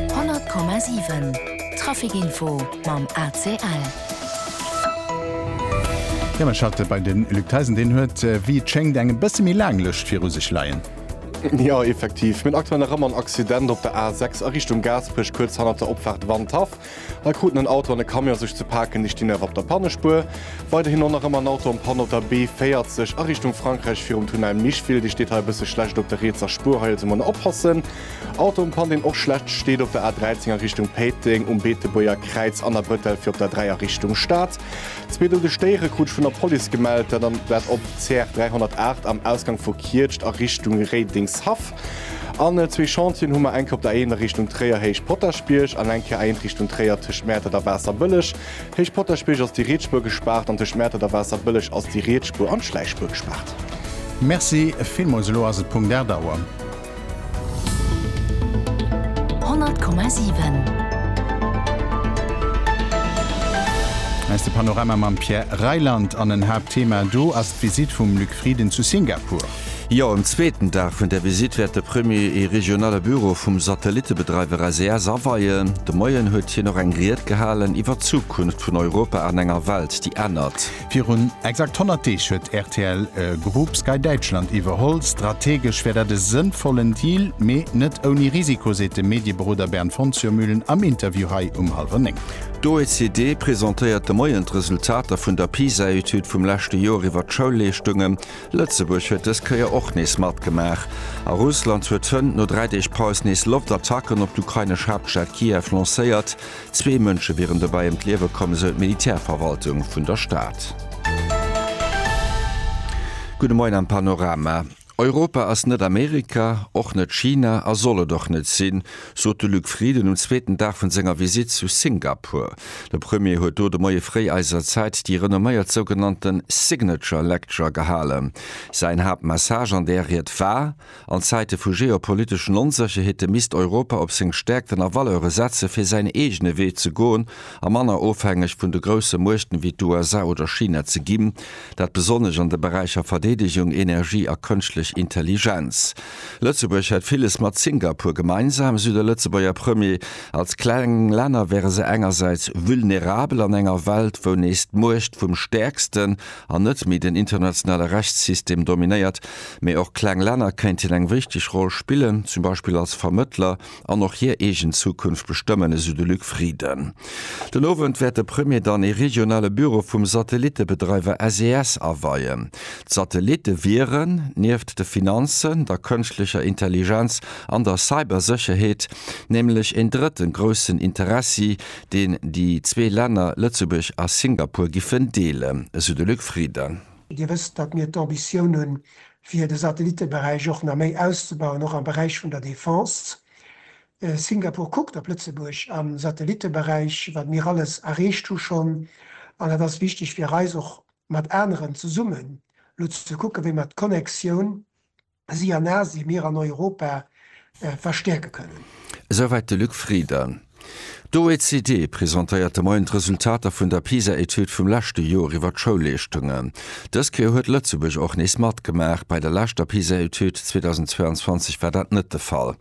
100,7 Traficinfo mam ACL. Jo mir schalte bei den Luc Theisen, deen huet wéi et schéngt eng e bësse méi laang Lëscht viru sech leien. Jo effektiv, mir hunn aktuell nach ëmmer en Accident op der A 6 a Richtung Gaasperech, kuerz hannert der Opfaart Wandhaff. Da kruten en Auto an e Camion sech ze paken, déi stinn awer op der Pannespuer. Weiderhin och nach ëmmer en Auto an Panne op der B40 a Richtung Frankräich virum Tunnel Micheville, dee steet hei e bësse schlecht op der rietser Spuer. Hei also man oppassen. Auto um Pan, deen och schlecht steet op der A13 a Richtung Péiteng, um Beetebuerger Kräiz an a Bretel fir op der 3 a Richtung Stad. Zwee doude Stéiere krut ech vun der Police gemellt, dat op CR 308 am Ausgang vu Kietscht a Richtung Réidengshaff. An zwee Chantieren hu mer, eng Kéier op der Eeëner Richtung Tréier, Héich Potaschbierg, an eng Kéier Eent Richtung Tréier, tëscht Mäertert a Waasserbëlleg. Héich Potaschbierg ass déi Rietsspuer gespaart an tëscht Mäertert a Waasserbëlleg ass déi Rietsspuer an d'Schläichspuer gespaart. Merci villmools. Elo ass et Punkt 8 Auer. 100,7. Hei ass de Panorama mam Pierre Reyland an en Haaptthema do ass d'Visitt vum Luc Frieden zu Singapur. Jo, um zweeten Dag vun der Visitt wäert de Premier ee regionale Büro vum Satellittebedreiwer SES aweien. De Moien huet hien och eng Ried gehalen iwwer d'Zukunft vun Europa an enger Welt, déi ännert. Virun exakt 100 Deeg huet rtl Group Sky Däitschland iwwerholl. Strategesch wär dat e sënnvollen Deal, mee net ouni Risiko, seet de Medieberoder Bernd von Zürmühlen am Interview hei um hallwer néng. D'OECD presentéiert de Moien d'Resultater vun der PISA-Etüd vum leschte Joer iwwer d'Schoulleeschtungen. Lëtzebuerg huet dës Kéier och nees matgemaach a Russland huet d'Fënnt no dräi Deeg Paus nees Loftattacken op d'ukrainesch Haaptstad Kiew lancéiert. Zwee Mënsche wieren dobäi ëm d'Liewe komm, esou d'Militärverwaltung vun der Stad. Gudde Moien am Panorama. Europa ass net Amerika, och net China a soll et och net sinn. sot de Luc Frieden um zweeten Dag vun senger Visitt zu Singapur. De Premier huet do de Moie fréi eiser Zäit déi renomméiert sougenannte Signature Lecture gehalen. Säin Haaptmessage an där Ried war, an Zäite vu geopoliteschen Onsécherheete misst Europa op seng Stäerkten a Valeure setze fir säin eegene Wee ze goen a manner ofhängeg vun de grousse Muechten wéi d'USA oder China ze ginn, dat besonnesch an de Beräicher Verdeedegung, Energie a Kënschtlech Intelligenz. Lëtzebuerg hätt villes mat Singapur gemeinsam, esou de Lëtzebuerger Premier. Als kleng Länner wäre se engersäits vulnerabel an enger Welt, wou nees d'Muecht vum Stäerksten an net méi den internationale Rechtssystem dominéiert. Mee och kleng Länner kéinten eng wichteg Roll spillen, zum Beispill als Vermëttler an och hir eegen Zukunft bestëmmen, esou de Luc Frieden. Den Owend wäert de Premier dann ee regionale Büro vum Satellittebedreiwer SES aweien. D'Satellitte wieren, nieft de Finanzen, der kënschtlecher Intelligenz an der Cybersécherheet, nämlech een drëtten groussen Interessi, deen déi zwee Länner Lëtzebuerg a Singapur giffen deelen, esou de Luc Frieden. Dir wësst, datt mir d'Ambitioun hunn, fir de Satellitteberäich och nach méi auszebauen, och am Beräich vun der Defense. Singapur kuckt op Lëtzebuerg am Satellitteberäich, wat mir alles erreecht hu schonn, an et ass wichteg fir eis och mat aneren zesummen elo ze kucken, wéi mer d'Connectioun, si an Asien, mir an Europa, verstäerke kënnen. Esouwäit de Luc Frieden. D'OECD presentéiert de Moien d'Resultater vun der PISA-Etüd vum leschte Joer iwwer d'Schoulleeschtungen. Dës Kéier huet Lëtzebuerg och nees matgemaach. Bei der leschter PISA-Etüd 2022 war dat net de Fall.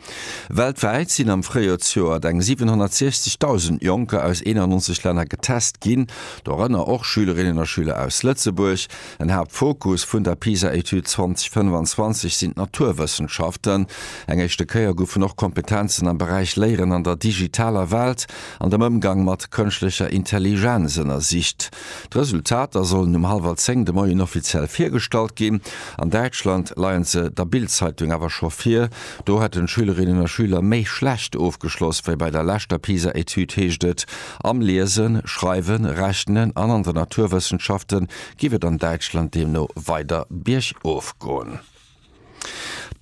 Weltwäit sinn am Fréijoersjoert eng 760.000 Jonker aus 91 Länner getest ginn, dorënner och Schülerinnen a Schüler aus Lëtzebuerg. En Haaptfokus vun der PISA-Etüd 2025 sinn d'Naturwëssenschaften. Eng éischte Kéier goufen och Kompetenzen am Beräich Léieren an der digitaler Welt an dem Ëmgang mat kënschtlecher Intelligenz ënnersicht. D'Resultater sollen um hallwer zéng de Moien offiziell virgestallt ginn. An Däitschland leien se der Bild-Zeitung awer scho vir. Do hätten d'Schülerinnen a Schüler méi schlecht ofgeschloss wéi bei der leschter PISA-Etüd, heescht et. Am Liesen, Schreiwen, Rechnen an an de Naturwëssenschaften géif et an Däitschland deemno weider biergof goen.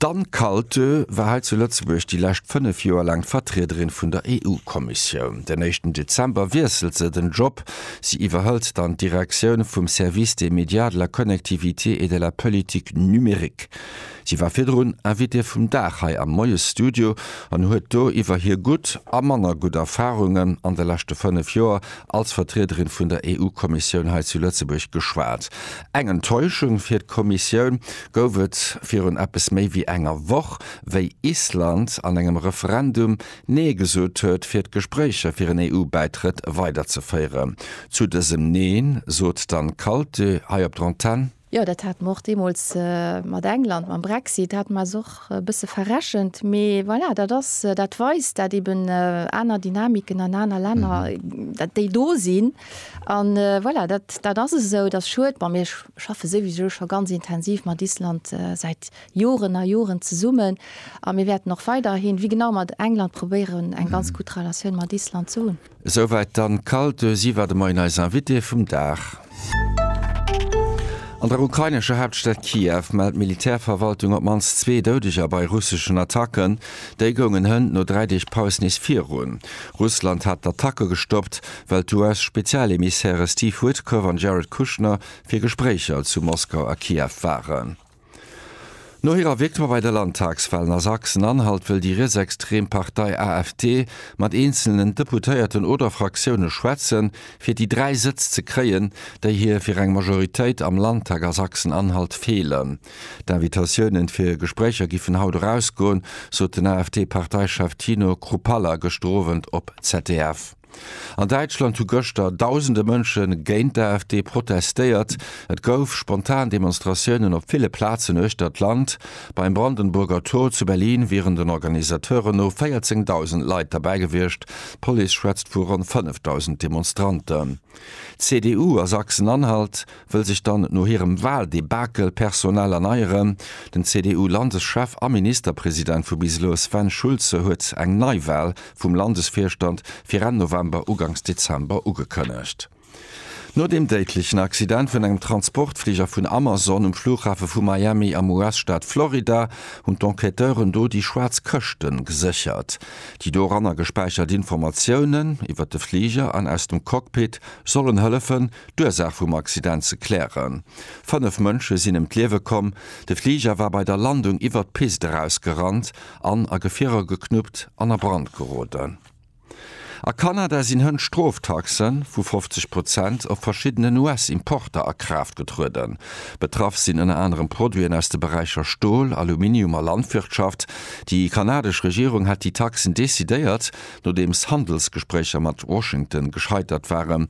D'Anne Kaltö war hei zu Lëtzebuerg déi lescht fënnef Joer laang d'Vertriederin vun der EU-Kommissioun. Den éischten Dezember wiesselt se den Job. Si iwwerhëlt dann d'Direktioun vum Service des médias, de la connectivité et de la politique numérique. Si war virdrun Invitée vum Dag hei am Moiesstudio an huet do iwwer hir gutt a manner gutt Erfarungen an de leschte 5 Joer als Vertriederin vun der EU-Kommissioun hei zu Lëtzebuerg geschwat. Eng Enttäuschung fir d'Kommissioun gouf et virun eppes méi wéi enger Woch, wéi Island an engem Referendum Nee gesot huet, fir d'Gespréicher fir en EU-Bäitrëtt weiderzeféieren. Zu dësem Neen sot d'Anne Kaltö hei op der Antenn. Jo, dat hate mer och deemools mat England, mam Brexit, dat hat eis och e bësse verrechent. Mee voilà, dat ass, dat weist dat eeben aner Dynamiken an aner Länner, dat déi do sinn. An voilà, dat, dat ass esou, et ass schued. Bon, mir schaffe souwisou scho ganz intensiv mat Island säit Joren a Joren zesummen a mir wäerten och weiderhin, wéi genau mat England, probéieren eng ganz gutt Relatioun mat Island ze hunn. Esouwäit d'Anne Kalte, si war de Moien eis Invitée vum Dag. An der ukrainescher Haaptstad Kiew mellt d'Militärverwaltung op d'mannst zwee Doudeger bei russeschen Attacken. Déi goungen hënt no dräi Deeg Paus nees virun. Russland hat d'Attacke gestoppt, well d'US-Spezialemissäre Steve Witkoff an Jared Kushner fir Gespréicher zu Moskau a Kiew waren. No hirer Victoire bei de Landtagswalen a Sachsen-Anhalt wëll déi rietsextrem Partei AfD mat eenzelnen Deputéierten oder Fraktioune schwätzen, fir déi dräi Sëtz ze kréien, déi hir fir eng Majoritéit am Landtag a Sachsen-Anhalt feelen. D'Invitatiounen fir Gespréicher giffen haut erausgoen, sot den AfD-Parteichef Tino Kruppalla gëschter Owend op ZDF. An Däitschland hu gëschter dausende Mënsche géint d'AfD protestéiert. Et gouf spontan Demonstratiounen op ville Plazen uechter d'Land. Beim Brandenburger Tor zu Berlin wieren den Organisateuren no 14.000 Leit derbäi gewiescht, d'Police schwätzt vu ronn 5.000 Demonstranten. D'CDU a Sachsen-Anhalt. wëll sech dann no hirem Wahldebakel personell erneieren. Den CDU-Landeschef a Ministerpresident vu bis elo, Sven Schulze, huet eng Neiwahl vum Landesvirstand fir Enn November, Uganks Dezember ugekënnegt. No dem déidlechen Accident vun engem Transportfliger vun Amazon um Flughafe vu Miami am US-Staat Florida hunn d'Enquêteuren do déi schwaarz Këschte geséchert. Déi doranner gespäichert Informatiounen iwwert de Fliger an aus dem Cockpit sollen hëllefen, d'Ursaach vum Accident ze klären. Fënnef Mënsche sinn ëm d'Liewe komm, de Fliger war bei der Landung iwwert d'Pist erausgerannt an a Gefierer geknuppt an a Brand geroden. A Kanada sinn hënt Stroftaxe vu 50 Prozent op verschiddenen US-Importer a Kraaft getrueden. Betraff sinn ënner anerem Produiten aus de Beräicher Stol, Aluminium a Landwirtschaft. Déi kanadesch Regierung hat déi Taxen decidéiert, nodeems Handelsgespréicher mat Washington gescheitert waren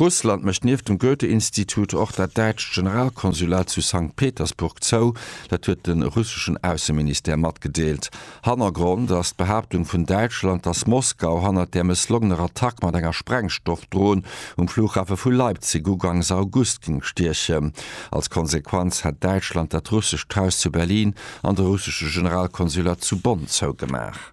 Russland mécht nieft dem Goethe-Institut och dat däitscht Generalkonsulat zu Sankt Petersburg zou. Dat huet de russeschen Ausseministère matgedeelt. Hannergrond ass d'Behaaptung vun Däitschland, datt Moskau hannert där mësslongener Attack mat enger Sprengstoffdron um Flughafe vu Leipzig ugangs August géing stiechen. Als Konsequenz hätt Däitschland dat russescht Haus zu Berlin an de russesche Generalkonsulat zu Bonn zougemaach.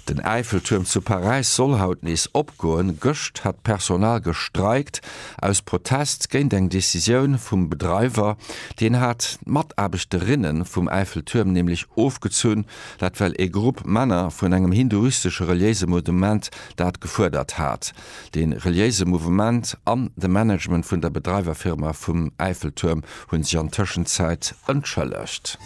Den Äifeltuerm zu Paräis soll haut nees opgoen. Gëscht hat d'Personal gestreikt aus Protest géint eng Decisioun vum Bedreiwer. Deen hat d'Mataarbechterinnen vum Äifeltuerm nämlech ofgezunn. Dat well ee Grupp Männer vun engem hinduistesche reliéise Mouvement dat gefuerdert hat. De reliéise Mouvement an de Management vun der Bedreiwerfirma vum Äifeltuerm hunn sech an Tëschenzäit entschëllegt.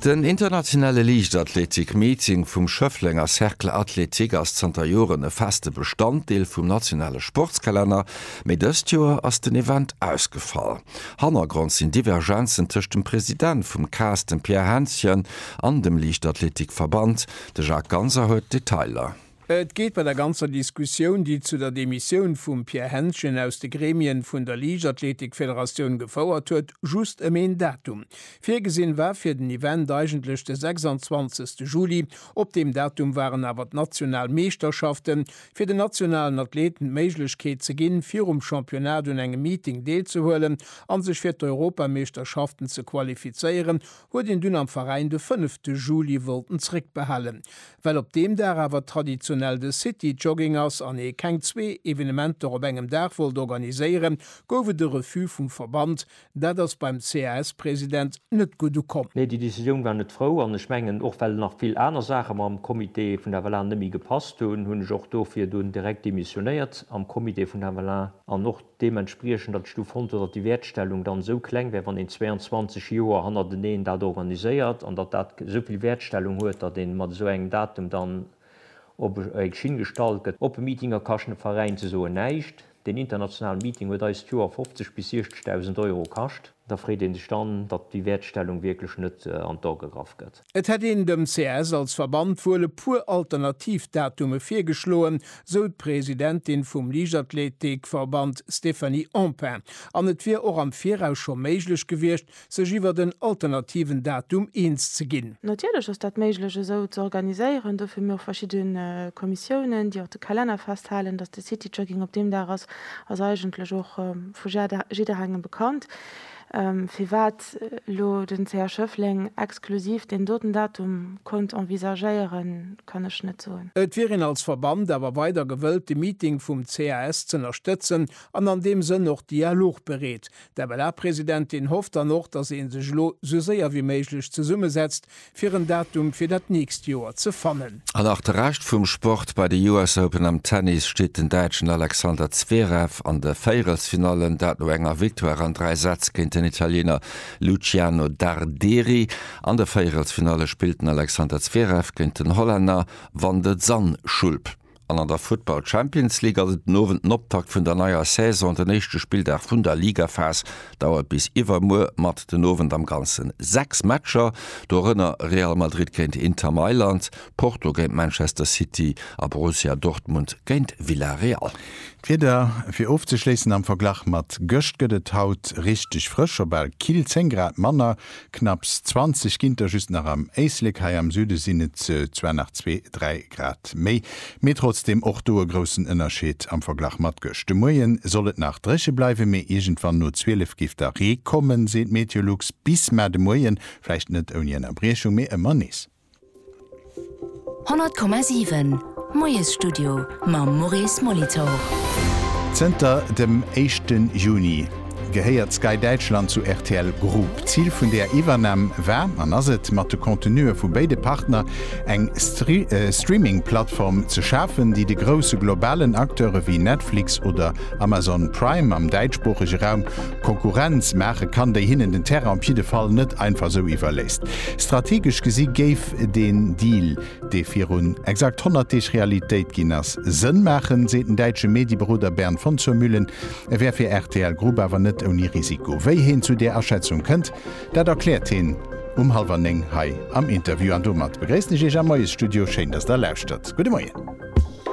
Den internationale Liichtathletik-Meeting vum Schëfflenger Cercle Athlétique ass zanter Joren e feste Bestanddeel vum nationale Sportskalenner, mee dëst Joer ass den Event ausgefall. Hannergrond sinn Divergenzen tëscht dem President vum cas, dem Pierre Hänschen, an dem Liichtathletik-Verband. De Jacques Ganser huet d'Detailer. Et geet bei der ganzer Diskussioun, déi zu der Demissioun vum Pierre Hentgen aus de Gremien vun der Liichtathletikfederatioun gefouert huet, just ëm een Datum. Virgesinn war fir den Event eigentlech de 26 Juli. Op deem Datum waren awer d'national Meeschterschaften, fir den nationalen Athleten d'Méiglechkeet ze ginn, virum Championnat un engem Meeting deelzehuelen an sech fir d'Europameeschterschaften ze qualifizéieren, huet een dunn am Veräin de fënnefte Juli wollten zréckbehalen. Well op deem Dag awer traditionell de City Jogging ass an ee keng zwee Evenementer op engem Dag wollt organiséieren, gouf et e Refus vum Verband. Dat ass beim CAS-President net gutt ukomm. Nee, déi Decisioun war net frou an ech mengen och well nach vill aner Saache mam Comité vun der Avalon net méi gepasst hunn, hunn ech och dofir dunn direkt demissionéiert am Comité vun der Avalon an och, deementspriechend, datt ech du fonnt hunn, datt déi Wäertstellung dann esou kleng wär, wann een 22 Joer hannerteneen dat organiséiert an datt dat esou vill Wäertstellung huet, datt ee mat esou engem Datum dann op eng Schinn gestallt gëtt. Oppe Meetinger kaschten de Veräin ze soen näischt. Deen internationalen Meeting huet eis d'Joer 50 bis 60.000 Euro kascht. Da freet ee sech dann, datt déi Wäertstellung wierklech net an d'A gegraff gëtt. Et hätt een dem CS als Verband wuel e puer alternativ Datume virgeschloen, sou d'Presidentin vum Liichtathleetik-Verband Stéphanie Empain, an et wier och am Viraus scho méiglech gewiescht, sech iwwert en alternativen Datum eens ze ginn. Natierlech ass dat méiglech esou ze organiséieren. Dofir hu mir och verschidde Kommissiounen, déi och de Kalenner festhalen. Datt de City Jogging op deem Dag ass, ass eigentlech och vu jidderengem bekannt. Firwat elo den CH Schëffleng exklusiv deen doten Datum konnt envisagéieren, kann ech net soen. Et wier een als Verband awer weider gewëllt de Meeting vum CAS z'ënnerstëtzen an an deem Sënn och dialogbereet. D'MLA-Presidentin hofft dann och, datt ee sech elo sou séier wéi méiglech zesummesetzt, fir en Datum fir dat nächst Joer ze fannen. An och de Rescht vum Sport, Bei de US Open am Tennis steet den Däitschen Alexander Zverev an de Véierelsfinallen, dat no enger Victoire an dräi Sätz géint den Italiener Luciano Darderi. An de Véierelsfinalle spillt den Alexander Zverev géint den Hollänner Van de Zandschulp. An an der Futtball Champions League ass et den Owend den Optakt vun der neier Saison. Den éischte Spilldag vun der Ligaphas dauert bis iwwermuer mat den Owend am Ganzen 6 Matcher, dorënner Real Madrid géint Inter Mailand, Porto géint Manchester City a Borussia Dortmund géint Villarreal. D'Wieder fir ofzeschléissen, Am Verglach mat gëscht gëtt et haut richteg frësch, op bal kill 10 Grad manner Knapps 20 Ginter just nach am Éislek, hei am Süde sinn et zwar nach zwee, dräi Grad méi, mee trotzdeem och do e groussen Ënnerscheed am Verglach mat gëscht. De Moie soll et nach dréche bleiwen, mee iergendwann no 12 géif da Ree kommen, seet Meteolux. Bis mar de Moien, vläicht net ouni Ënnerbriechung, mee ëmmer nees. 100,7 Moiesstudio mam Maurice Molitor. Zënter dem éischte Juni gehéiert Sky Däitschland zu rtl Group. Zil vun där Iwwernam war an ass et, mat de Contenue vu béide Partner eng Streaming-Plattform ze schafen, déi de grousse globalen Acteure wéi Netflix oder Amazon Prime am däitschsproochege Raum Konkurrenz maache kann, déi hinnen den Terrain op jidde Fall net einfach sou iwwerléisst. Strategesch gesi géif den Deal, dee virun exakt 100 Deeg Realitéit ginn ass, Sënn maachen, seet den däitsche Medieberoder Bernd von zur Mühlen. E wär fir rtl Group awer net ouni Risiko. Wéi heen zu där Aschätzung kënnt, dat erkläert heen um hallwer néng hei am Interview. An domat begréissen ech Iech am Moiesstudio. Schéin, dass Der lauschtert. Gudde Moien.